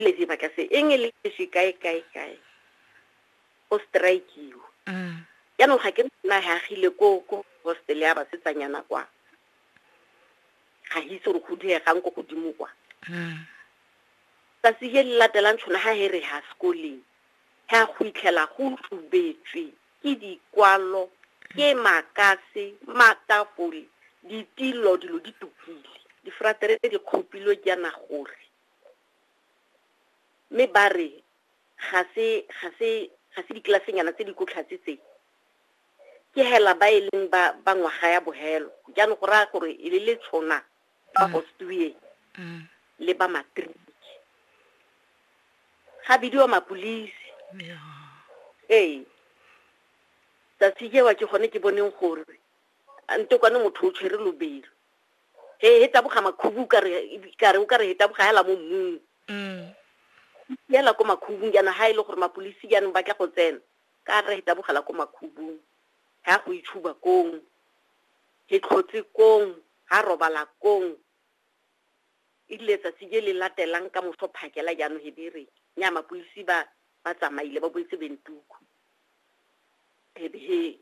le dira ka se eng le leswi kae kae kae go strikewa mm. jaanong ga ke nna hagile ko ko hostel ya basetsanyana kwa ga itse gore go diegang ko godimo kwa mm. tsatsi le le latelang tshwana ga he re ha sekoleng ga go itlhela go tubetswe ke dikwalo ke makase matafole ditilo dilo di tukile difratere di kgopilwe jaana gore mme ba re ga se ga se ga se diklasenyana tse di kotlhatse tse ke hela ba e leng ba ba ngwaga ya bohelo jaanong go raya gore e le le tshona ba gostueng Mm. le ba matriki ga bidiwa mapolisi Yeah. ee tsatsi jewa ke gone ke boneng gore a ntokwane motho o tshwere lobelo he he taboga makhubu ka re ka re o ka re he taboga hela mo mmung mm. yela ko makhubung jaana ha e le gore mapolisi jaanong ba tla go tsena ka re he tabogela ko makhubung ha go itshuba kong he tlhotse kong ha robala kong e dile tsatsi je le latelang ka moso phakela jaanong he dire nya mapolisi ba ba tsamaile ba boetse bentuku he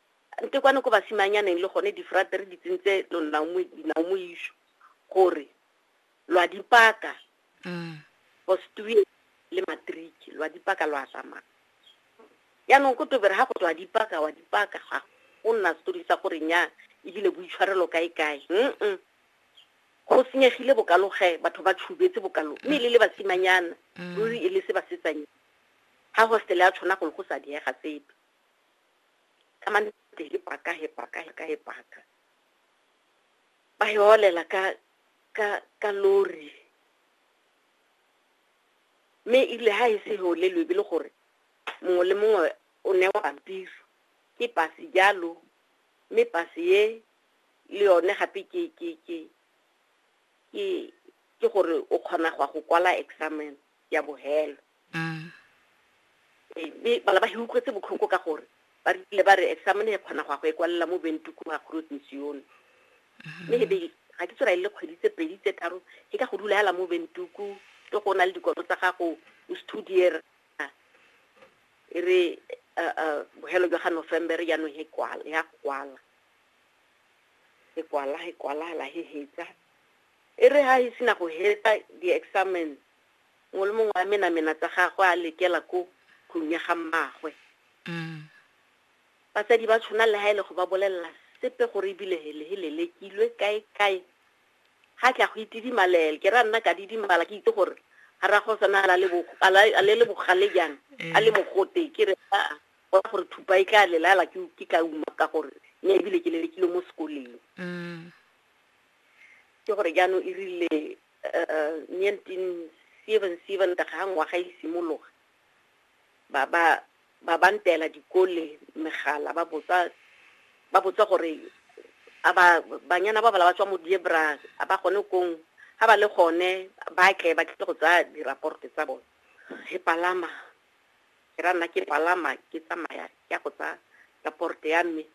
Nte kwane ko basimanyaneng le gone difrate re di tsentse dinaomoiso gore lwa dipaka mm. bostue le matriki lwa dipaka lwa tsamaya yaanong ko tobere ga go tswa dipaka wa dipaka ga go nna setori sa gore nya ebile boitshwarelo kae kae mm go senyegile bokaloge batho ba tshubetse bokalo mme le le basimanyana mm. ruri e le se basetsanyana ga hostele ya tshwana golo go sa diega sepe ka mane he paka he paka he ka he paka ba he olela ka ka ka lori mme ile ha e se he olelwe e le gore mongwe le mongwe o ne wa pampiri ke pasi jalo mme pasi ye le yone gape ke ke ke ke ke gore o kgona go go kwala examen ya bohelo Mm. Ee, mme bana ba hiukwetse botlhoko ka gore ba rile ba re examine e kgona go ya go e kwalela mo bentuku ga groot mission mme e be ga ke tsora e le kgwedi tse pedi tse tharo ke ka go dula yala mo bentuku ke go na le dikolo tsa gago o studier e re uh, uh, bohelo jwa ga november jaanong he kwala ya go kwala e kwala e kwala la he hetsa e re ha e sena go hetsa di-examen Mongwe le mongwe a menamena tsa gagwe a lekela ko tlong ya ga mmaagwe. Batsadi ba tshona le ha e le go ba bolelela sepe gore ebile hele he lelekilwe kae kae. Ga tla go itidimalele ke ra nna ka didimala ke itse gore ga ra go sana la le a le le bogale jang a le mogote ke re a go gore thupa e tla lelala ke ke tla uma ka gore ne ebile ke lelekile mo sekoleng. Ke gore jaanong e rile 1977 ga ngwaga e simologa ba ba ba ba ntela dikole megala ba botsa ba botsa gore a ba banyana ba bala ba tswa mo diebra a ba gone kong ha ba le gone ba tle ba tle go tsaya diraporte tsa bone he palama ke ra nna ke palama ke tsamaya ke ya go tsa raporte ya mme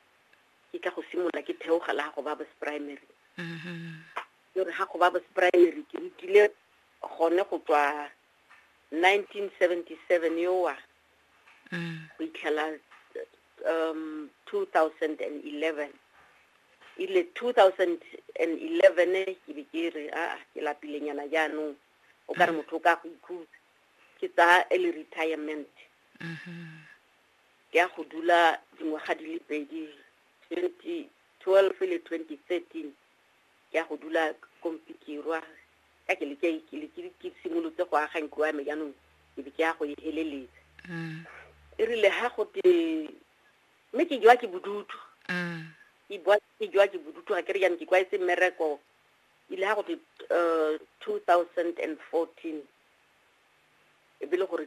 ke tla go simolola ke theogela go ba primary mm-hmm. Ke re ga go ba bo primary ke rutile gone go tswa 1977 yowa go itlhela um 2011 ile 2011 ke be ke re a ke lapilenyana jaanong o ka re mm. motho o ka go ikhutsa ke tsaya early retirement mm-hmm. ke ya go dula dingwaga di le pedi 2012 le 2013 ke ya go dula ko mpikirwa ka ke leke ke leke ke simolotse go aga ntlo ya me jaanong ke be ke ya go e heleletsa Mm. e rile ha go te mme ke jwa ke bodutu Mm. ke bua- ke jwa ke bodutu ga ke re jaanong ke kwaetse mmereko ile ha go te um two thousand and fourteen e be le gore